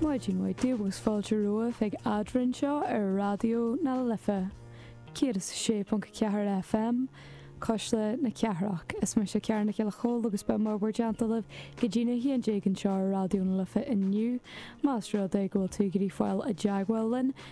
Maidin mhaith daoibh agus fáilte romhaibh ag Eadrainn seo ar Raidió na Life 106.4 FM, Cuisle na Cathrach. Is mise Ciara Nic Giolla Chomhaill agus beidh mur mbarr déanta libh go dtí'n 11 anseo ar Raidió na Life inniu. Más rud é go bhfuil tú ag iarraidh fáil i dteagmháil linn,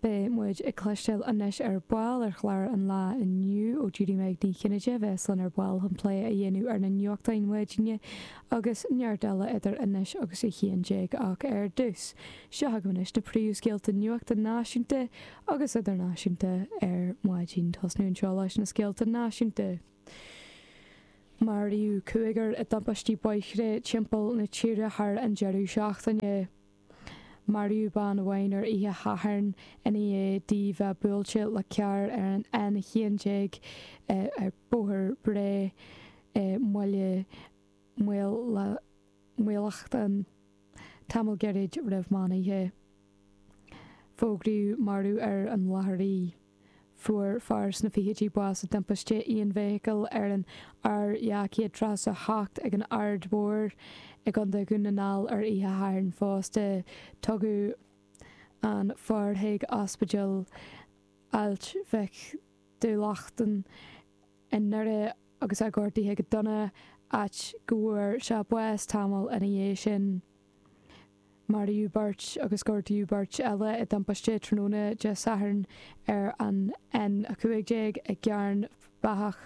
Beidh muid ag cloisteáil anois ar ball ar chlár an lae inniu ó Judy Meg Ní Chinnéide a bheas linn ar ball chun plé a dhéanamh ar na nuachtáin maidine agus neart eile idir anois agus a haon déag ach ar dtús, seo chugaibh anois na príomhscéalta nuachta náisiúnta agus idirnáisiúnta ar maidin. Tosnú anseo leis na scéalta náisiúnta. Maraíodh cúigear i dtubaistí bóithre timpeall na tíre thar an deireadh seachtaine. Maraíodh bean amháin ar oíche Shathairn ina dhiaidh di bheith buailte le carr ar an N11 ar Bhóthar Bhré i mBaile Uí Lachnáin tamall gairid roimh meán oíche. Fógraíodh marbh ar an láthair í. Fuair fear sna fichidí bás i dtimpiste aonfheithicle ar an R237 ag an Aird Mhóir i gContae Dhún na nGall ar oíche Shathairn fosta. Tugadh an fear chuig Ospidéal Ailt Mhic Dhubhleachtan i nDoire agus é gortaithe go dona, áit go bhfuair sé bás tamall ina dhiaidh sin. Maraíodh beirt agus gortaíodh beirt eile i dtimpiste tráthnóna Dé Sathairn ar an N15 i gCearn Beathach.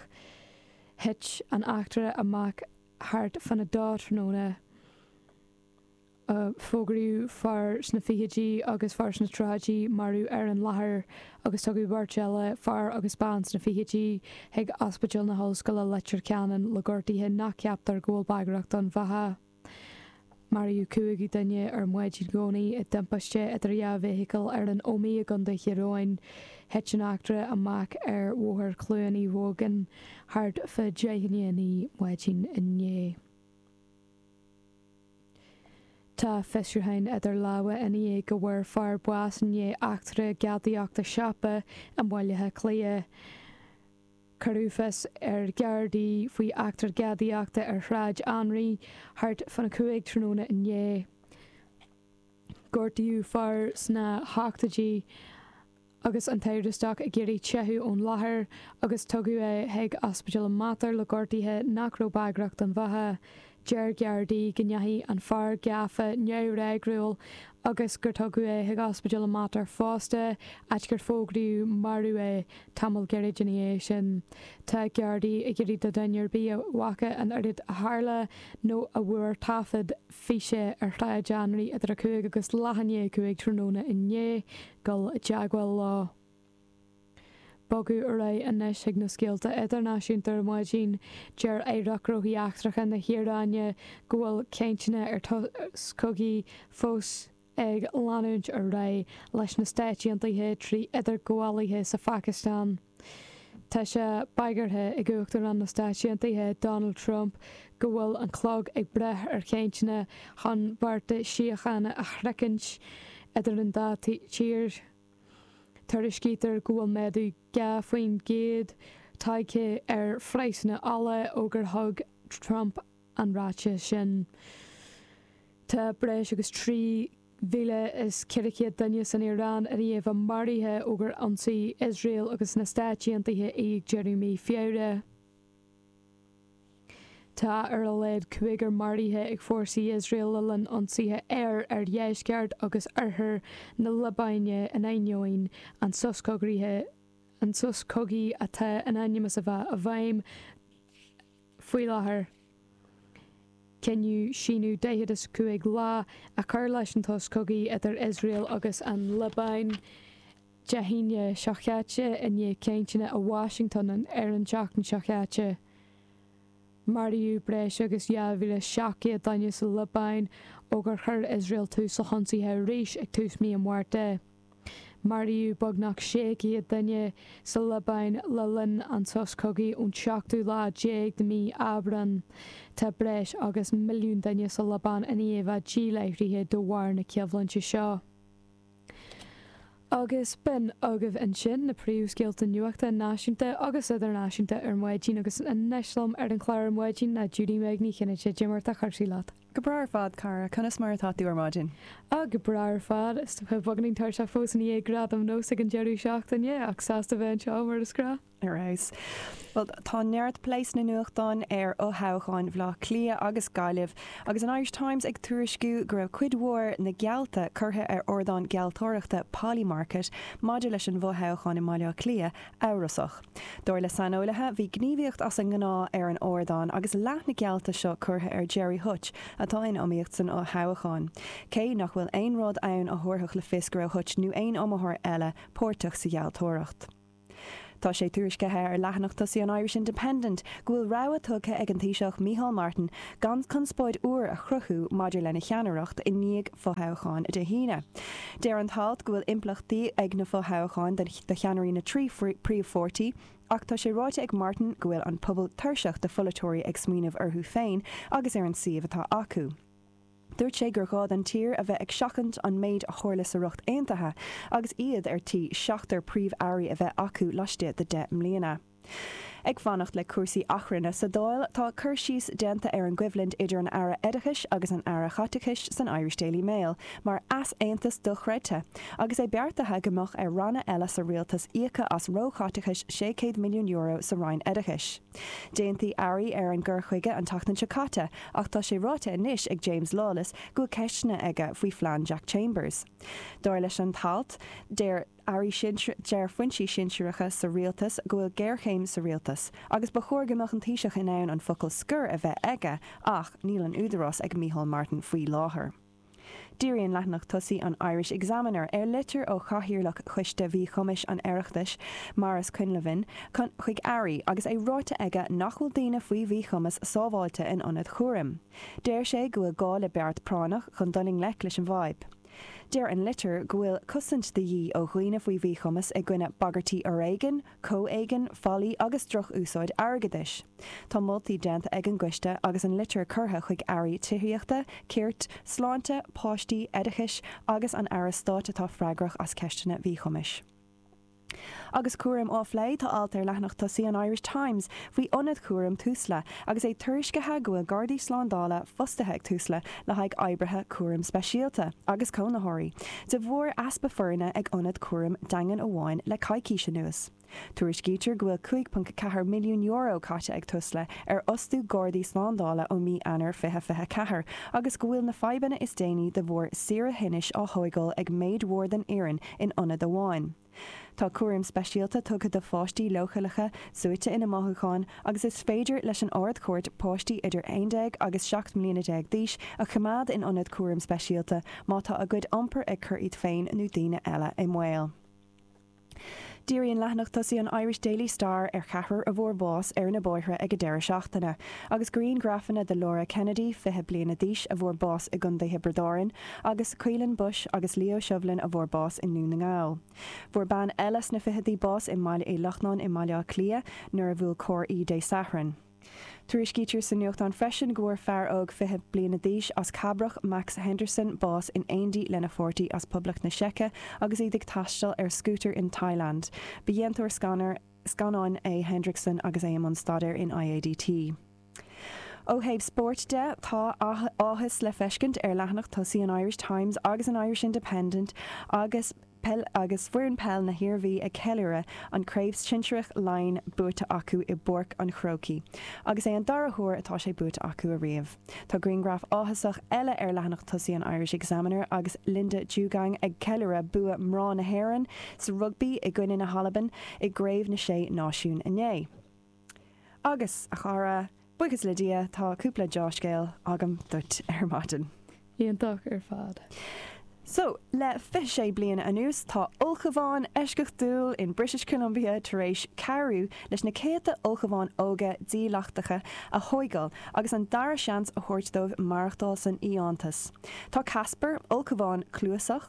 Thit an eachtra amach thart fan 2 tráthnóna. Fógraíodh fear sna fichidí agus fear sna tríochaidí marbh ar an láthair agus tugadh beirt eile, fear agus bean sna fichidí, chuig Ospidéal na hOllscoile, Leitir Ceanainn le gortuithe nach gceaptar go bhfuil bagrach don bheatha. Maraíodh cúigiú duine ar maidin Dhomhnaigh i dtimpiste idir dhá fheithicil ar an Ómaigh i gContae Thír Eoghain. Thit an eachtra amach ar Bhóthar Chluain Uí Mhógain thart fá deich chun a naoi maidin inné. Tá fiosrúcháin idir lámha ina dhiaidh go bhfuair fear bás i ndiaidh eachtra gadaíochta siopa i mBaile Átha Cliath. Cuireadh fios ar Ghardaí faoi eachtra gadaíochta ar Shráid Anraí thart fán 5 tráthnóna inné. Gortaíodh fear sna hochtóidí agus an t-amhrastach ag iarraidh teitheadh ón láthair agus tugadh é chuig Ospidéal an Mater le gortuithe nach raibh bagrach don bheatha. Deir Gardaí go ndeachaigh an fear gafa neamhfhreagrúil agus gur tugadh é chuig Ospidéal an Mater fosta áit gur fógraíodh marbh é tamall gairid ina dhiaidh sin. Tá Gardaí ag iarraidh ar dhuine ar bith a bhfaca an rud a tharla nó a bhfuair taifead físe ar Shráid Anraí idir a cúig agus leath i ndiaidh a cúig tráthnóna inné dul i dteagmháil leo. Bogadh ar aghaidh anois chuig na scéalta idirnáisiúnta ar maidin. Deir Aireacht Gnóthaí Eachtracha na hIaráine go bhfuil cainteanna ar shos cogaidh fós ag leanúint ar aghaidh leis na Stáit Aontaithe trí idirghabhálaithe sa Phacastáin. Tá sé bagartha ag Uachtarán na Stáit Aontaithe Donald Trump go bhfuil an clog ag breith ar chainteanna chun bearta síochána a shroichint idir an dá thír. Tuairiscítear go bhfuil méadú 2 faoin gcéad tagtha ar phraghsanna ola ó gur thug Trump an ráiteas sin. Tá breis agus 3,400 duine san Iaráin i ndiaidh a maraithe ó gur ionsaigh Iosrael agus na Stáit Aontaithe í ag deireadh mhí Feabhra. Tá ar a laghad cúigear maraithe ag fórsaí Iosrael le linn ionsaithe aeir ar dheisceart agus oirthear na Liobáine in ainneoin an sos cogaithe an sos cogaidh atá in ainm is a bheith i bhfeidhm faoi láthair. Cinneadh síneadh 45 lá a chur leis an tsos cogaidh idir Iosrael agus an Liobáin Dé hAoine seo chaite i ndiaidh cainteanna i Washington an ar an tseachtain seo chaite, maraíodh breis agus 2,700 duine sa Liobáin ó gur chuir Iosrael tús le hionsaithe arís ag tús mí an Mhárta. Maraíodh beagnach 600 duine sa Liobáin le linn an sos cogaidh ón tseachtú lá déag de mhí Aibreán. Tá breis agus milliún duine sa Liobáin ann féin amháin díláithrithe de bharr na coimhlinte seo. Agus b'in agaibh ansin na príomhscéalta nuachta náisiúnta agus idirnáisiúnta ar maidin agus anois liom ar an chlár ar maidin ná Judy-Meg Ní Chinnéide, cad é mar atá cúrsaí leat. Go breá ar fad, cara, conas mar atá tú ar maidin? Ah, go breá ar fad. Saghas, beagáinín tuirseach fós i ndiaidh Gradaim Nós ag an deireadh seachtaine, ach sásta bheith anseo mar is gnáth. Ar fheabhas. Bhuel, tá neart plé sna nuachtáin ar fhothoghcháin Bhaile Átha Cliath agus Gaillimh, agus an Irish Times ag tuairisciú go raibh cuid mhór na geallta curtha ar ardán gealltóireachta Polymarket maidir leis an bhfothoghchán i mBaile Átha Cliath amhrasach. Dar le saineolaithe, bhí gníomhaíocht as an ngnáth ar an ardán agus leath na geallta seo curtha ar Gerry Hutch, atá in iomaíocht san fhothoghchán, cé nach bhfuil aon rud ann a thabharfadh le fios go raibh Hutch nó aon iomaitheoir eile páirteach sa ghealltóireacht. Tá sé tuairiscithe ar leathanach tosaigh an Irish Independent go bhfuil rabhadh tugtha ag an Taoiseach Micheál Martin gan conspóid úr a chruthú maidir lena cheannaireacht i ndiaidh fothoghcháin Dé hAoine. Deir an t-alt go bhfuil impleachtaí ag na fothoghcháin do cheannairí na dtrí phríomhpháirtí ach tá sé ráite ag Martin go bhfuil an pobal tuirseach de pholaiteoirí ag smaoineamh orthu féin agus ar an suíomh atá acu. Dúirt sé gur gá don tír a bheith ag seachaint an méid a tharla sa Ríocht Aontaithe agus iad ar tí seachtar Príomh-Airí a bheith acu laistigh de 10 mbliana. Ag fanacht le cúrsaí achrainn sa Dáil tá cur síos déanta ar an gcoimhlint idir an Aire Oideachais agus an Aire Chaiteachais san Irish Daily Mail mar easaontas dochreidte agus é beartaithe go mbeadh ar ranna eile sa Rialtas íoc as róchaiteachais €600 milliún sa Roinn Oideachais. D'aontaigh airí ar an gcur chuige an tseachtain seo caite ach tá sé ráite anois ag James Lawless go bhfuil ceisteanna aige faoi phlean Jack Chambers. Dar leis an t-alt, deir airí sinsearacha, deir foinsí sinsearacha sa rialtas go bhfuil géarchéim sa rialtas agus ba chóir go mbeadh an Taoiseach in ann an focal scoir a bheith aige ach níl an údarás ag Micheál Martin faoi láthair. Díríonn leathanach tosaigh an Irish Examiner ar litir ó Chathaoirleach Choiste Mhíchumais an Oireachtais, Maurice Quinlivan, chuig Airí agus é ráite aige nach bhfuil daoine faoi mhíchumas sábháilte in ionad chúraim. Deir sé go bhfuil gá le beart práinneach chun dul i ngleic leis an bhfadhb. Deir an litir go bhfuil cosaint de dhíth ó dhaoine faoi mhíchumas i gcoinne bagairtí fhoréigin, Comhéigin, faillí agus drochúsáid airgeadais. Tá moltaí déanta ag an gCoiste agus an litir curtha chuig Airí Tithíochta, Cirt, Sláinte, Páistí, Oideachais agus an Aire Stáit atá freagrach as ceisteanna mhíchumais. Agus cúraim á phlé, tá alt ar leathanach tosaigh an Irish Times faoi ionad cúraim Tusla Agus é tuairiscithe go bhfuil Gardaí Slándála fostaithe ag Tusla le haghaidh oibrithe cúraim speisialta agus cónaitheoirí, de bharr easpa foirne ag ionad cúraim daingean amháin le coicís anuas. Tuairiscítear go bhfuil €5.4 milliún caite ag Tusla ar fhostú Gardaí Slándála ó mí Eanáir 2024 agus go bhfuil na fadhbanna is déanaí de bharr saoire thinnis á thóigeáil ag méid mhór den fhoireann in ionad amháin. Tá cúram speisialta tugtha do pháistí leochaileacha suaite ina mothúcháin agus is féidir leis an Ard-Chúirt páistí idir 11 agus 17 mbliana d'aois a choimeád in ionad cúraim speisialta má tá a gcuid iompair ag cur iad féin nó daoine eile i mbaol. Díríonn leathanach tosaigh an Irish Daily Star ar cheathrar a bhfuair bás ar na bóithre ag an deireadh seachtaine, agus grianghrafanna de Laura Kennedy, 20 bliana d'aois, a bhfuair bás i gContae Thiobraid Árann, Agus Caoilinn Bushe agus Leo Shovlin a bhfuair bás i nDún na nGall. Fuair bean eile sna fichidí bás i mBaile Uí Lochnáin i mBaile Átha Cliath nuair a bhuail carr í Dé Sathairn. Tuairiscítear sa nuachtán freisin go bhfuair fear óg fiche bliana d'aois as Cabrach, Max Henderson, bás in éindí lena pháirtí as Poblacht na Seice agus iad ag taisteal ar scútar in Thailand. Ba dhéantóir scannáin é Hendrickson agus é i mbun staidéir in IADT. Ó thaobh spóirt de, tá áthas le feiscint ar leathanach tosaigh an Irish Times agus an Irish Independent agus foireann peile na hIarmhí ag ceiliúradh an Craobh Shinsearach Laighean buaite acu i bPáirc an Chrócaigh agus é an dara huair atá sé buaite acu ariamh. Tá grianghraf áthasach eile ar leathanach tosaigh an Irish Examiner agus Linda Djougang ag ceiliúradh bua mná na hÉireann sa rugbaí i gcoinne na hAlban i gCraobh na Sé Náisiún inné. Agus, a chara, buíochas le Dia, tá cúpla deá-scéal agam duit ar maidin. Iontach ar fad. So, le fiche sé bliana anuas, tá ulchabhán eisceachtúil in British Columbia tar éis cabhrú leis na céadta ulchabháin óga dílleachtacha a thóigeáil agus an dara seans a thabhairt dóibh maireachtáil san fhiántas. Tá Casper, ulchabhán cluasach,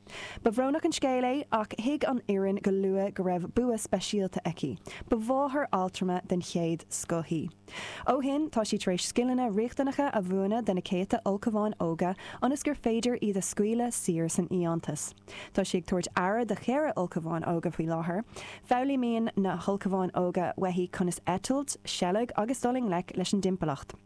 Ba bhrónach an scéal é ach thuig an fhoireann go luath go raibh bua speisialta aici. Ba mháthair altrama den chéad scoth í. Ó shin tá sí tar éis scileanna riachtanacha a mhúineadh do na céadta ulchabháin óga ionas gur féidir iad a scaoileadh saor san fhiántas. Tá sí ag tabhairt aire do cheithre ulchabhán óga faoi láthair. Foghlaímíonn na hulchabháin óga uaithi conas eitilt, seilg agus dul i ngleic leis an dtimpeallacht.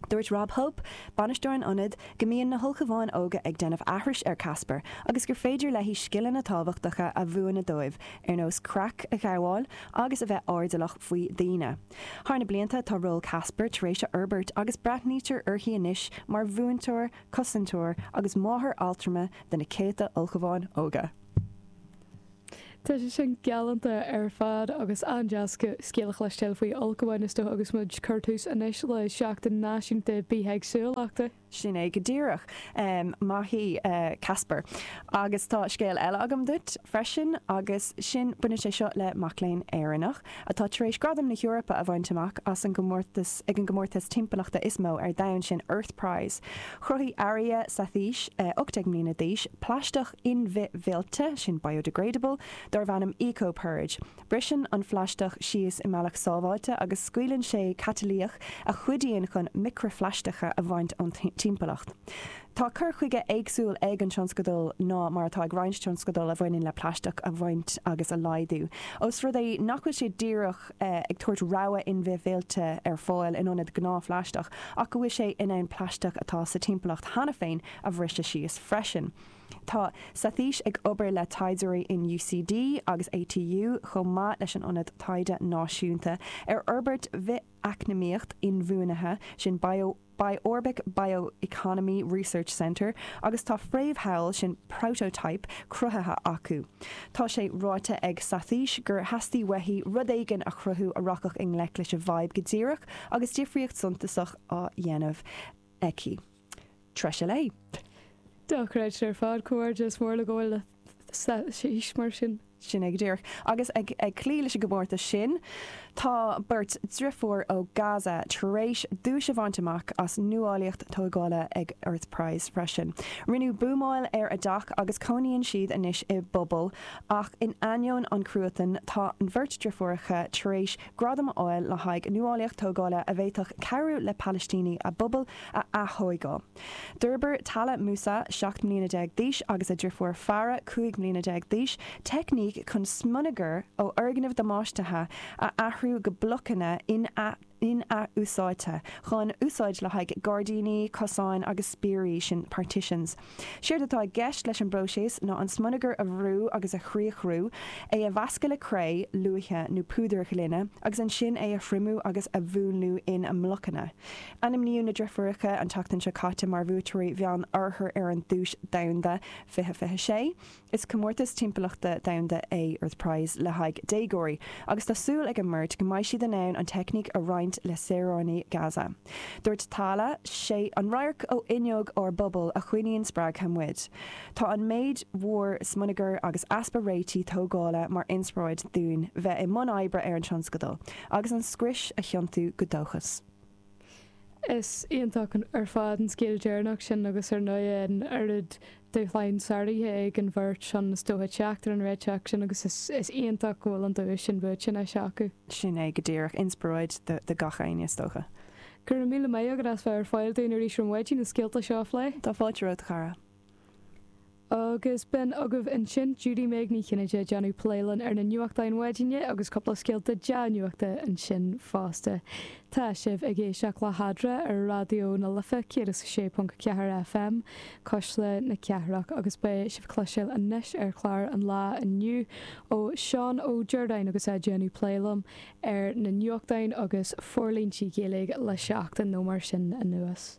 Dúirt Rob Hope, Bainisteoir an Ionaid, go mbíonn na hUlchabháin Óga ag déanamh aithris ar Casper agus gur féidir léi scileanna tábhachtacha a mhúineadh dóibh ar nós creach a ghabháil agus a bheith airdeallach faoi dhaoine. Thar na blianta tá ról Casper tar éis forbairt agus breathnaítear uirthi anois mar mhúinteoir, cosantóir agus máthair altrama do na céadta Ulchabháin Óga. Tá sé sin galánta ar fad agus an-deas scéal a chloisteáil faoi ulchabháin is dócha agus muid ag cur tús anois le Seachtain Náisiúnta Bithéagsúlachta. Sin é go díreach. Maith í Casper. Agus tá scéal eile agam duit freisin agus sin, baineann sé seo le mac léinn Éireannach atá tar éis gradam na hEorpa a bhaint amach as an gcomórtas ag an gcomórtas timpeallachta is mó ar domhan, sin Earth Prize. Chruthaigh Arya Satheesh, 18 mbliana d'aois, plaisteach in-bhithmhillte, sin biodegradable, darbh ainm EcoPurge. Briseann an phlaisteach síos i mbealach sábháilte agus scaoileann sé catalaíoch a chuidíonn chun micreaphlaisteacha a bhaint ón timpeallacht. Tá cur chuige éagsúil ag an tionscadal ná mar atá ag roinnt tionscadal a bhaineann le plaisteach a bhaint agus a laghdú. Ós rud é nach bhfuil sé díreach ag tabhairt rogha in-bhithmhillte ar fáil in ionad gnáthphlaisteach ach go bhfuil sé in ann plaisteach atá sa timpeallacht cheana féin a bhriseadh síos freisin, Tá Sathish ag obair le taighdeoirí in UCD agus ATU chomh maith leis an Ionad Taighde Náisiúnta ar Fhorbairt Bhith-eacnamaíocht Inbhuanaithe, sin BiOrbic Bioeconomy Research Centre, agus tá fréamhshamhail, sin prototype, cruthaithe acu. Tá sé ráite ag Sathish gur theastaigh uaithi rud éigin a chruthú a rachadh i ngleic leis a' bhfadhb go díreach agus difríocht suntasach á dhéanamh aici. Treise léi. Dochreidte ar fad. Comhghairdeas mór léi, bliain mhaith aici mar sin. Sin é go díreach. Agus ag cloí leis an gcomórtas sin, tá beirt driofúr ó Gaza tar éis duais a bhaint amach as nuálaíocht tógála ag Earth Prize freisin. Rinneadh buamáil ar a dteach agus cónaíonn siad anois i bpuball ach in ainneoin an cruatan, tá an bheirt driofúracha tar éis Gradam a fháil le haghaidh nuálaíocht tógála a bhféadfadh cabhrú le Palaistínigh a bpobal a aththóigeáil. D'fhorbair Tala Musa, 17 mbliana d'aois, agus a drifiúr Farah, 15 mbliana d'aois, teicníc chun smionagar ó fhoirgnimh damáistithe a athrú go blocanna in-athúsáidte chun úsáid le haghaidh gairdíní, cosáin agus spiaraí sin, partitions. Séard atá i gceist leis an bpróiseas ná an smionagar a bhrú agus a chriathrú, é a mheascadh le cré, luaith nó púdar gloine agus ansin é a thriomú agus a mhúnlú ina mblocanna. Ainmníodh na driofúireacha an tseachtain seo caite mar bhuaiteoirí Mheán Oirthear ar an duais domhanda, 2026. Is comórtas timpeallachta domhanda é Earth Prize le haghaidh déagóirí agus tá súil ag an mbeirt go mbeidh siad in ann an teicníc a roinnt le saoránaigh Gaza. Dúirt Tala, Sé an radharc ó fhuinneog ár bpubaill a choinníonn spreagtha muid. Tá an méid mhór smionagair agus easpa réitigh tógála mar inspioráid dúinn bheith i mbun oibre ar an tionscadal, agus an scrios a thiontú go dóchas. Is iontach ar fad an scéal deireanach sin agus ar ndóighe an oiread dúshlán sáraithe ag an bheirt sin is dóiche teacht ar an réiteach sin agus is iontach go bhfuil an duais sin buaite anois acu. Sin é go díreach. Inspioráid do gach éinne is dócha. Go raibh míle maith agat as bheith ar fáil dúinn arís ar maidin na scéalta seo a phlé. Tá fáilte romhat a chara. Agus b'in agaibh ansin Judy Meg Ní Chinnéide déanamh plé linn ar na nuachtáin maidine agus cúpla scéalta dea-nuachta ansin fosta. Tá sibh ag éisteacht le hAdra ar Raidió na Life 106.4 FM, Cuisle na Cathrach agus beidh sibh ag cloisteáil anois ar chlár an lá inniu ó Seán Ó Ríordáin agus é déanamh plé liom ar na nuachtáin agus forlíontí Gaeilge le seachtain nó mar sin anuas.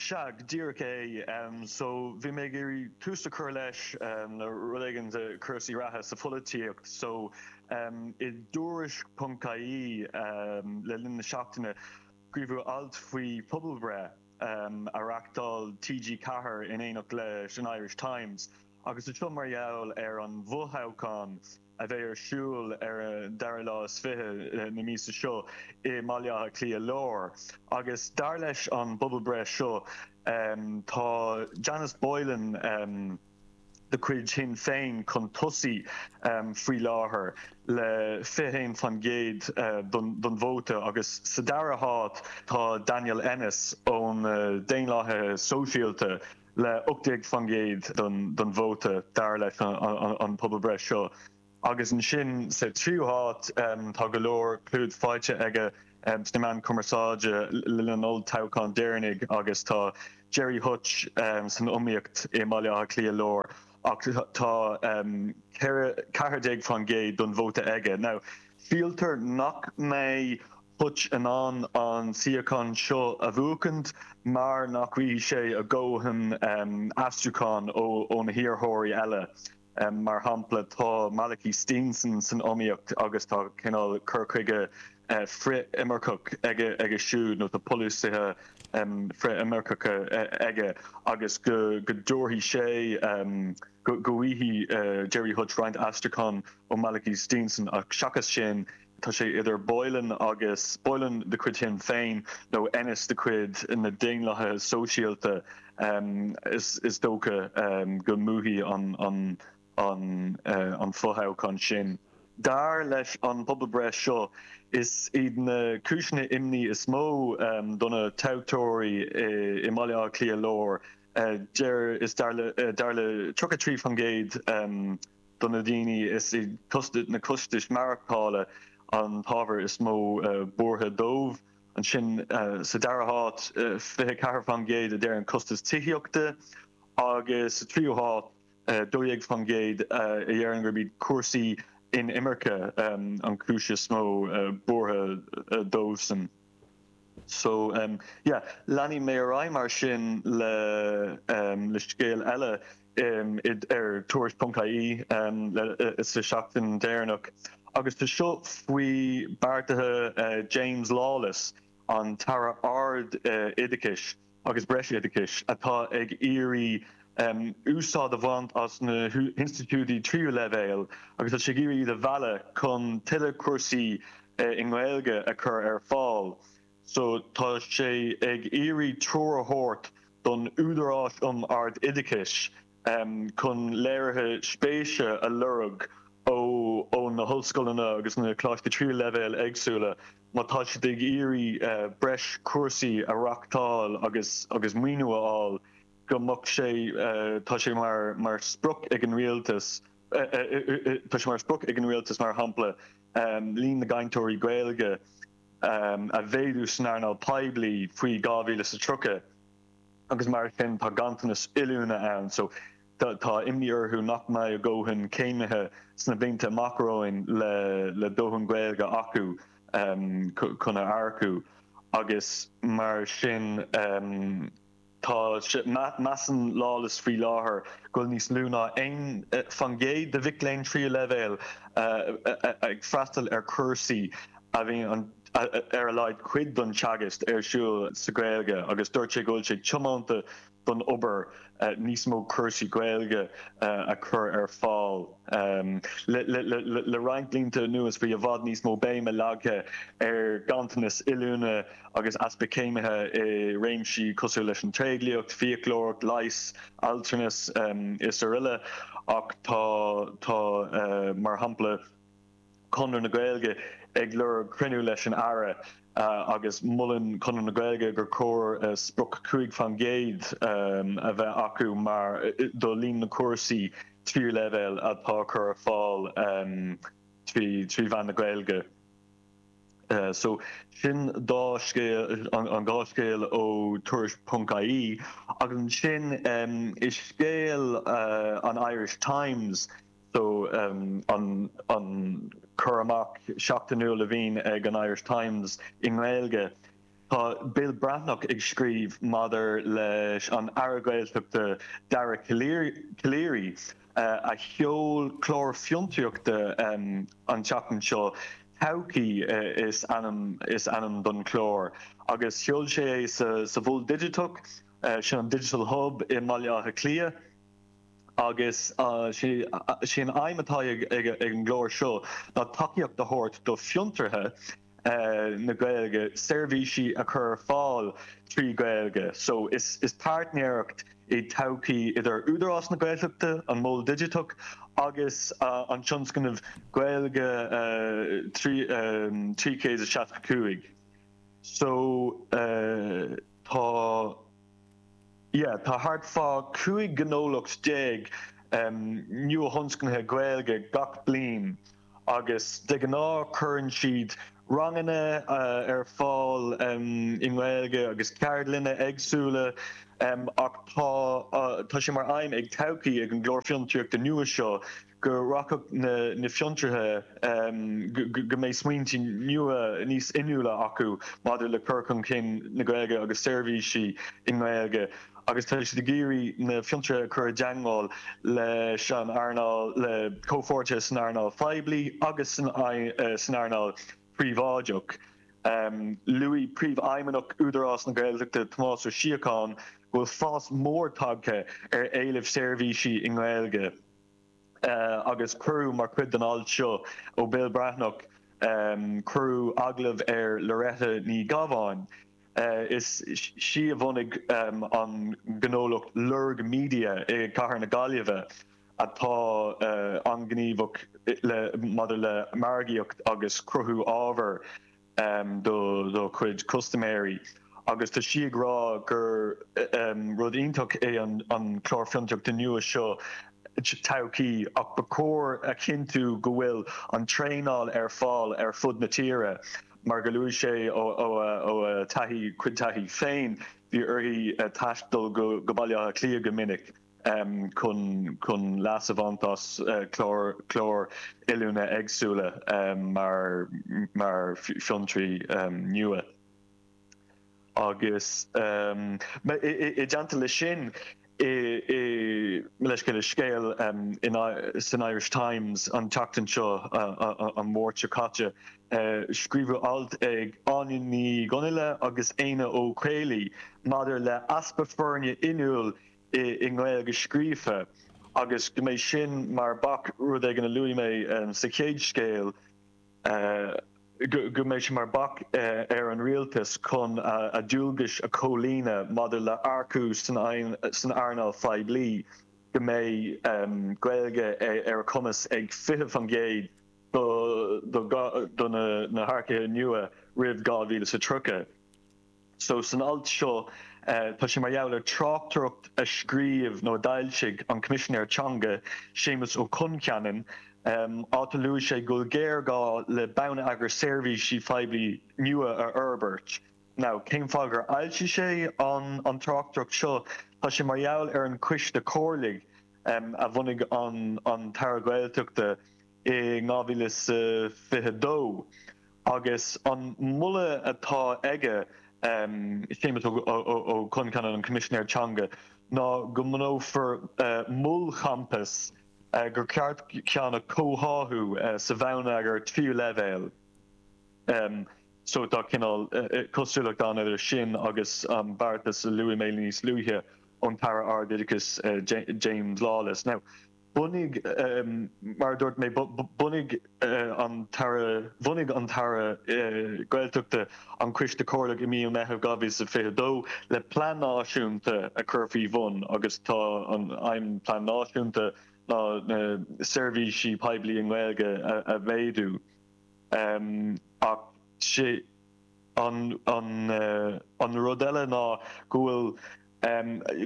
Sea, go díreach é. So, bhí mé ag iarraidh tús a chur leis, le rud éigin de chúrsaí reatha sa pholaitíocht. So, i dTuairisc punc ie, le linn na seachtaine, scríobhadh alt faoi phobalbhreith a reachtáil TG Ceathair in éineacht leis an Irish Times, agus is é seo mar gheall ar an bhfothoghchán. a bheidh ar siúl ar an dara lá is fiche na míosa seo i mBaile Átha Cliath Lár agus dar leis an bpobalbhreith seo tá Janice Boylan de chuid Shinn Féin chun tosaigh faoi láthair le 21% den vóta agus sa dara háit tá Daniel Ennis ó na Daonlathaithe Sóisialta le 18% den vóta dar leis an pobalbhreith seo. Agus ansin sa tríú háit tá go leor clúid faighte aige sna meáin chumarsáide le linn an olltoghcháin deireanaigh agus tá Gerry Hutch san iomaíocht i mBaile Átha Cliath Láir ach tá 14% den vóta aige. Now, síltear nach mbeidh Hutch in ann an suíochán seo a bhuachaint mar nach bhfaighidh sé a dhóthain aistriúcháin ó na hiarrthóirí eile. Mar shampla, tá Malachy Steenson san iomaíocht agus tá cineál cur chuige frith-inimirceach aige siúd, nó tá polasaithe frith-inimirceacha aige, agus go dtabharfaidh sé, go bhfaighidh Gerry Hutch roinnt aistriúchán ó Malachy Steenson ach seachas sin, Tá sé idir Boylan agus Boylan de chuid Shinn Féin nó Ennis de chuid na Daonlathaithe Sóisialta. Is dócha go mbuafaidh an fothoghchán sin. Dar leis an bpobalbhreith seo, is iad na cúiseanna imní is mó do na toghthóirí i mBaile Átha Cliath Láir, dar le 33% de na daoine, is iad na costais mhaireachtála an t-ábhar is mó buartha dóibh. Ansin sa dara háit, 24% a deireann costas tithíochta agus sa tríú háit, 12% a deireann gurb iad cúrsaí inimirce an chúis is mó buartha dóibhsan. So, yeah, leanfaidh mé ar aghaidh mar sin le scéal eile ar Tuairisc ponc ie sa tseachtain deireanach agus tá seo faoi beartaithe James Lawless, an tAire Ard-Oideachais. agus breisoideachais, atá ag iarraidh úsáid a bhaint as na hinstitiúidí tríú leibhéal agus tá sé ag iarraidh iad a mhealladh chun tuilleadh cúrsaí i nGaeilge a chur ar fáil so tá sé ag iarraidh treoir a thabhairt don Údarás um Ard-Oideachais chun léirithe spéise a lorg ó na hollscoileanna agus na Coláistí Tríú Leibhéal éagsúla má tá siad ag iarraidh breis cúrsaí a reachtáil agus maoiniú a fháil go mbeadh sé, tá sé mar sprioc ag an Rialtas, tá sé mar sprioc ag an Rialtas, mar shampla, líon na gcainteoirí Gaeilge a mhéadú san earnáil phoiblí faoi 2030. agus mar sin tá ganntanas oiliúna ann so tá imní orthu nach mbeidh a ndóthain céimithe sna blianta amach romhainn le dóthain Gaeilge acu chun a earcú agus mar sin tá sé, measann Lawless faoi láthair go bhfuil níos lú ná 1 faoin gcéad de mhic léinn tríú leibhéal ag freastal ar chúrsaí a bhíonn an. ar a laghad cuid den teagasc ar siúl sa Ghaeilge agus dúirt sé go bhfuil sé tiomanta don obair níos mó cúrsaí Gaeilge a chur ar fáil. Le roinnt blianta anuas bhí i bhfad níos mó béime leagtha ar ghanntanas oiliúna agus easpa céimithe i réimsí cosúil leis an tréidliacht, fiaclóireacht, leigheas, altranas, is araile ach tá, tá mar shampla, Conradh na Gaeilge ag lorg cruinniú leis an Aire agus molann Conradh na Gaeilge gur chóir sprioc cúig faoin gcéad a bheith acu mar do líon na cúrsaí tríú leibhéal atá a chur ar fáil trí mheán na Gaeilge. So sin dá scéal, an dhá scéal ó Tuairisc ponc ie agus ansin i scéal an Irish Times, So, an cur amach seachtainiúil a bhíonn ag an Irish Times i nGaeilge, tá Bill Breathnach ag scríobh maidir leis an Aire Gaeltachta Dara Calleary a sheol clár fiontraíochta an tseachtain seo, Todhchaí is ainm don chlár agus sheol sé é sa Mhol Digiteach, sin an Digital Hub i mBaile Átha Cliath. agus sé an aidhm atá ag an gclár seo ná tacaíocht a thabhairt do fiontraithe na Gaeilge seirbhísí a chur ar fáil trí Ghaeilge so is páirtnéireacht í Todhchaí idir Údarás na Gaeltachta, an Mol Digiteach agus an tionscnamh Gaeilge 365. So tá. yeah tá thart fá 15 gnólacht nuathionscnaithe Gaeilge gach bliain agus de ghnáth cuireann siad ranganna ar fáil i nGaeilge agus ceardlanna éagsúla ach tá sé mar aidhm ag Todhchaí, ag an gclár fiontraíochta nua seo, go rachadh na fiontraithe go mbeidh smaointe nua níos inniúla acu maidir le cur chun cinn na Gaeilge agus seirbhísí i nGaeilge agus tá siad ag iarraidh na fiontraithe a chur i dteangmháil leis an earnáil, le comhpháirtithe san earnáil phoiblí agus san earnáil phríobháideach. Luaigh Príomhfheidhmeannach Údarás na Gaeltachta, Tomás Ó Síocháin, go bhfuil fás mór tagtha ar éileamh seirbhísí i nGaeilge. agus cuireadh mar chuid den alt seo ó Bill Breathnach cuireadh agallamh ar Loretta Ní Ghabháin. Is í a bhunaigh an gnólacht Lorg Media i gcathair na Gaillimhe atá an-ghníomhach maidir le margaíocht agus cruthú ábhair. um dá dá cuid custaiméirí agus tá sí ag rá gur um rud iontach é an an Clár Fiontraíochta nua seo Todhchaí ach ba chóir a chinntiú go bhfuil an traenáil ar fáil ar fud na tíre mar go luaigh sí ó ó a ó a taithí cuid taithí féin bhí uirthi taisteal go go Baile Átha Cliath go minic chun leas a bhaint as cláir oiliúna éagsúla mar fiontraí nua agus i dteannta leis sin le scéal san Irish Times an tseachtain seo an Mháirt seo caite scríobhadh alt ag Áine Ní Dhonnaile agus Éanna Ó Caollaí maidir le easpa foirne inniúil i nGaeilge scríofa agus go mbeidh sin mar bac, rud éigin a luaigh mé sa chéad scéal, go mbeidh sé mar bac ar an Rialtas chun a dualgais a chomhlíonadh maidir le earcú san earnáil phoiblí, go mbeidh Gaeilge ar a gcumas ag 20% de na hearcaithe nua roimh 2030. So san alt seo tá sé mar gheall ar tráchtaireacht a scríobh nó a d'fhoilsigh an Coimisinéir Teanga, Séamus Ó Concheanainn, áit a luaigh sé go bhfuil géarghá le bonneagar seirbhísí phoiblí nua a fhorbairt. Now cén fáth gur fhoilsigh sé an tráchtaireacht seo? Tá sé mar gheall ar an coiste comhairligh a bhunaigh an tAire Gaeltachta, i 2022 agus an moladh atá aige, Séamus Ó Concheanainn, an Coimisinéir Teanga, ná go mbunófar molchampas gur ceart ceann a comhtháthú sa bhonneagar tríú leibhéal. So tá cineál cosúlacht ann idir sin agus an beartas a luaigh mé níos luaithe ón tAire Ardoideachais, James Lawless. Now. Bhunaigh, mar a dúirt mé, bhunaigh an tAire, bhunaigh an tAire Gaeltachta an Coiste Comhairleach i mí an Mheithimh 2022 le plean náisiúnta a chur faoi bhun agus tá an aidhm plean náisiúnta ná na seirbhísí poiblí i nGaeilge a mhéadú ach An rud eile ná go bhfuil,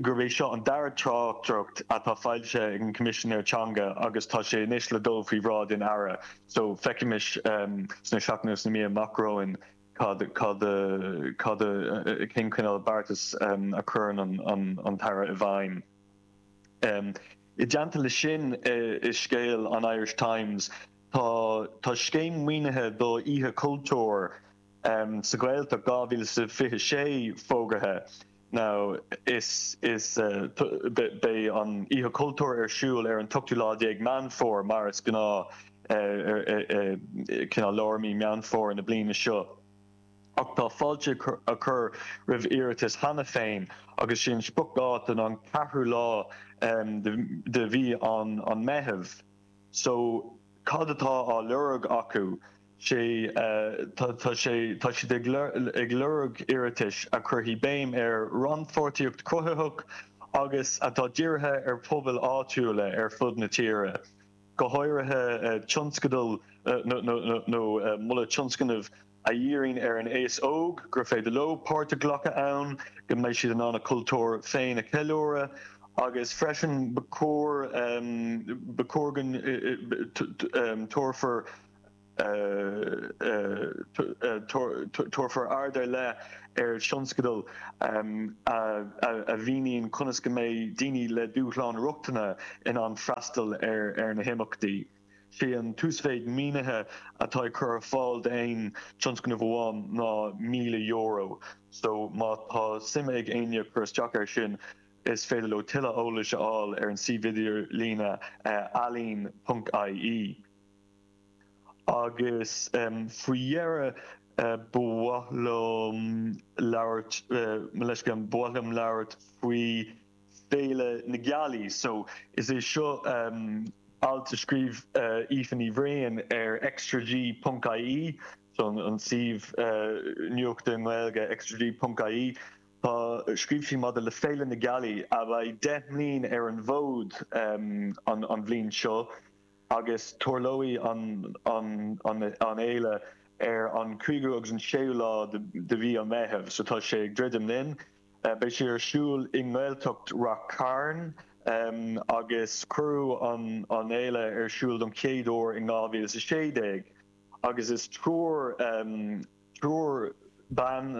gurb é seo an dara tráchtaireacht atá foilsithe ag an Coimisinéir Teanga agus tá sé anois le dul faoi bhráid an Aire so feicimis sna seachtainí nó sna míonna amach romhainn cén cineál beartais a chuireann an tAire i bhfeidhm. I dteannta leis sin i scéal an Irish Times, Tá Tá scéim maoinithe do Oíche Chultúir sa Ghaeltacht 2026 fógartha now is is beidh an Oíche Chultúir ar siúl ar an t-ochtú lá déag Meán Fómhair mar is gnáth cineál lár mí Meán Fómhair na bliana seo ach tá fáilte á chur roimh iarratais cheana féin agus sí an spriocdháta ná an ceathrú lá de mhí an Meitheamh. So, cad atá á lorg acu? Sé, tá sé, tá siad ag, ag lorg iarratais a chuirfidh béim ar rannpháirtíocht chruthaitheach agus atá dírithe ar phobail áitiúla ar fud na tíre, go háirithe tionscadail nó moladh tionscnaimh a dhíríonn ar an aos óg, gur féidir leo páirt a ghlacadh ann, go mbeidh siad in ann a chultúr féin a cheiliúradh agus freisin ba chóir ba chóir go dtabharfar tabharfar aird ar leith ar thionscadail a mhíníonn conas go mbeidh daoine le dúshláin rochtana in ann freastal ar na himeachtaí. Sé an t-uasmhéid mínithe atá á chur ar fáil d'aon tionscnamh amháin ná €1,000 so má tá suim ag éinne cur isteach air sin is féidir leo tuilleadh eolais a fháil ar an suíomh idirlíne ealaín.ie. Agus faoi dheireadh ba mhaith liom labhairt, mo leithscéal, ba mhaith liom labhairt faoi Féile na Gealaí. So, is é seo alt a scríobh Aoife Ní Bhraoin ar xtraG ponc ie, so an suíomh nuachta i nGaeilge, xtraG ponc ie, tá, scríobh sí maidir le Féile na Gealaí a bheidh deich mbliain ar an bhfód an bhliain seo agus tarlóidh an fhéile ar an 5ú agus an 6ú lá de mhí an Mheithimh, so tá sé ag druidim linn. Beidh sé ar siúl i nGaeltacht Rath Cairn agus cuireadh an fhéile ar siúl don chéad uair in 2016 agus is triúr triúr ban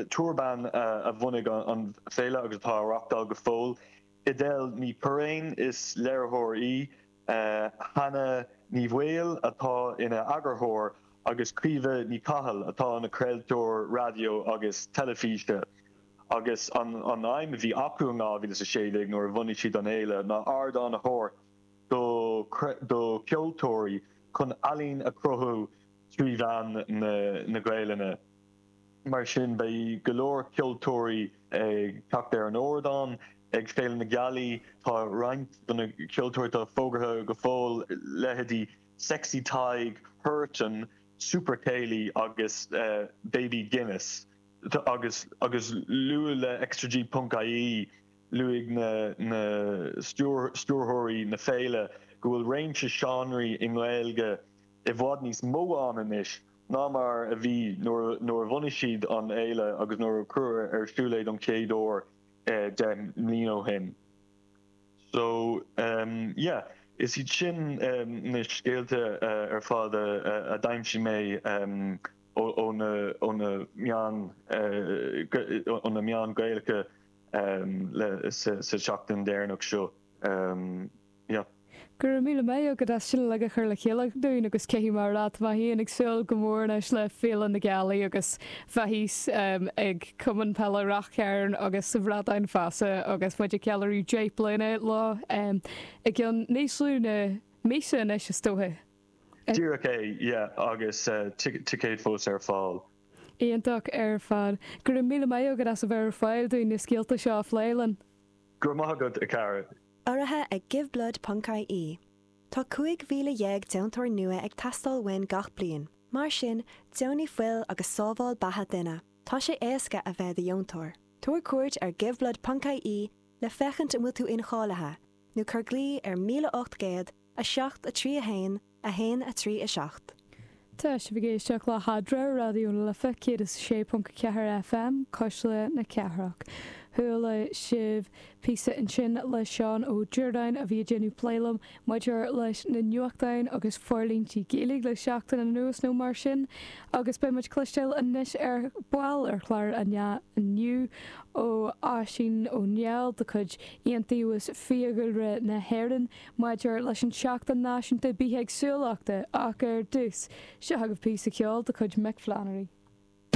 triúr ban a bhunaigh an féile agus atá á reachtáil go fóill, Edel Ní Churraoin, is léiritheoir í. Hannah Ní Bhaoill atá ina eagarthóir agus Caoimhe Ní Chathail atá ina craoltóir raidió agus teilifíse agus an aidhm a bhí acu in 2016 nuair a bhunaigh siad an fhéile ná ardán a thabhairt do cheoltóirí chun ealaín a chruthú trí mheán na Gaelainne. mar sin beidh go leor ceoltóirí ag teacht ar an ardán ag Féile na Gealaí. Tá roinnt de na ceoltóirí atá fógartha go fóill, leithéidí Sexy Tadhg, Huartan, Super Céilí agus Baby Guinness agus luadh le xtraG ponc ie, luaigh na stiúrthóirí na féile go bhfuil réimse seánraí i nGaeilge i bhfad níos mó ann anois ná mar a bhí nuair a bhunaigh siad an fhéile agus nuair a cuireadh ar siúl é don chéad uair deich mbliain ó shin. So yeah, is iad sin na scéalta ar fad a d'aimsigh mé ó na meáin ó na meáin Ghaelacha sa tseachtain dheireanach seo. Níor. Go raibh míle maith agat as sin uilig a chur le chéile dúinn agus caithfidh mé a rá tá mé fhéin ag súil go mór anois le Féile na Gealaí agus bheith thíos ag Cumann Peile Rath Chairn agus sa Bhradán Feasa agus muid ag ceiliúradh deich mbliana leo i gcionn níos lú na míosa anois is dócha. Díreach é, yeah agus ticéid fós ar fáil. Iontach ar fad. Go raibh míle maith agat as a bheith ar fáil dúinn na scéalta seo a phlé linn. Go raibh maith agat, a chara. Urraithe ag Giveblood Ponc IE, Tá 15,000 deontóir nua ag teastáil uainn gach bliain, mar sin deonaigh fuil agus sábháil beatha duine. Tá sé éasca a bheith i do dheontóir. Tabhair cuairt ar Giveblood Ponc IE le féachaint an bhfuil tú incháilithe nó cuir glao ar 1800 7 3 1 1, 3, 7. Tá sibh ag éisteacht le hEadra ar Raidió na Life 106.4 FM, cuisle na cathrach. Chuala sibh píosa ansin le Seán Ó Diurdáin a bhí ag déanamh plé liom maidir leis na nuachtáin agus forlíontí Gaeilge le seachtain anuas nó mar sin agus beidh muid cloisteáil anois ar ball ar chlár inniu ó Oisín Ó Néill de chuid Iontaobhas Fiadhúlra na hÉireann. Maidir leis an tSeachtain Náisiúnta Bithéagsúlachta, ach ar dtús, seo agaibh píosa ceoil de chuid Mick Flannery.